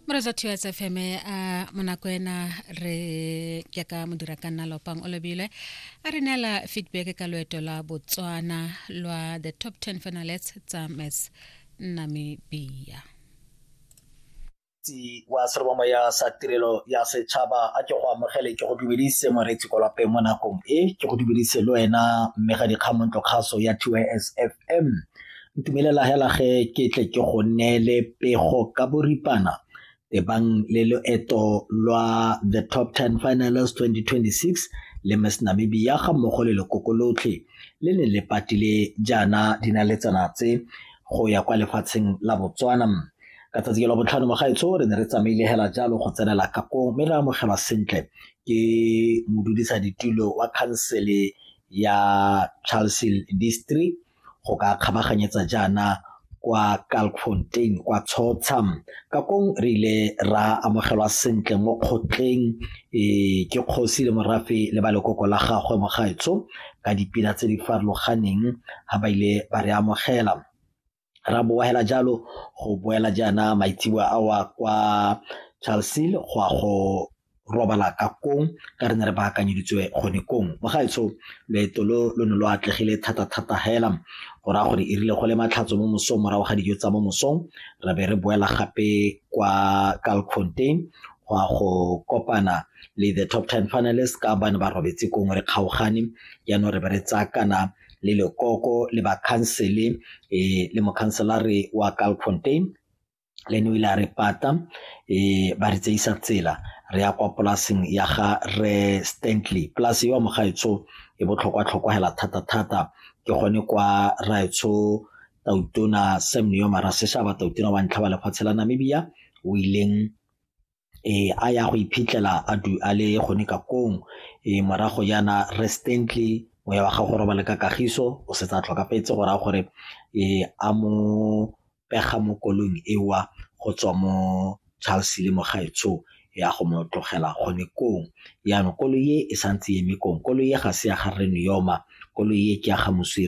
moreja two s fm a monako ena re ke ka modira ka nna lopang o lebile a re neela feedback ka loeto la botswana lwa the top 10 finalets tsa mes namibia moreetsi wa serobamoya sa tirelo ya setšhaba a ke go amogele ke go dumedise moreetsi ko lapeng mo nakong e ke go dumedise le wena mme ga dikgamontlo kgaso ya tys fm Ntumelela hela ge ke tle ke go neele pego ka boripana tebang le loeto lwa the top 10 finalist 2026 le miss namibia ga mmogo le lekoko lotlhe le ne le patile jaana dinaletsana tse go ya kwa lefatsheng la botswana ka tsatsi ke la botlhano mogaetsho re ne re tsamaile hela jalo go tsenela kakong mme re amogelwa sentle ke modudisa ditulo wa khansele ya charlesel district go ka kgabaganyetsa jaana kwa Kalkfontein kwa Tshotsha ka kong re ile ra amogelwa sentle mo kgotleng e ke kgosi le morafe le ba lekoko la gagwe mogaetsho ka dipina tse di farologaneng ga ba ile ba re amogela ra boela jalo go boela jaana maitseboa awa kwa Charlesville go a go robala ka kong ka re ne re baakanyeditswe gone kong bagaetsho leeto lo lo ne lo atlegile thata-thata hela go raya gore e rile go le matlhatso mo mosong morago ga dijo tsa mo mosong re be re boela gape kwa calcontain go a go kopana le the top ten finalist ka bane ba robetse kong re kgaogane jaanong re be re tsaya kana le lekoko le bakhansele um le mokhanselare wa calcontain le ene o ile a re pata um ba re tseisa tsela re ya kwa polaseng ya ga re stantley polase yo mo gaetsho e botlhokwa-tlhokwa hela thata-thata ke gone kwa raetsho tautona sam neo maraseshaba tautona wa ntlha wa lefatshe la namibia o ileng a ya go iphitlhela a du a le gone ka kong e morago yana restently moya wa gago robale ka kagiso o setsa tlhokafetse go raya gore e a mo pega mo kolong ewa go tswa mo Charles le mogaetsho ya go mo tlogela gone kong yana koloi e santse e eme kong koloi e ga se ya ga rre Neoma koloi e ke ya ga moswire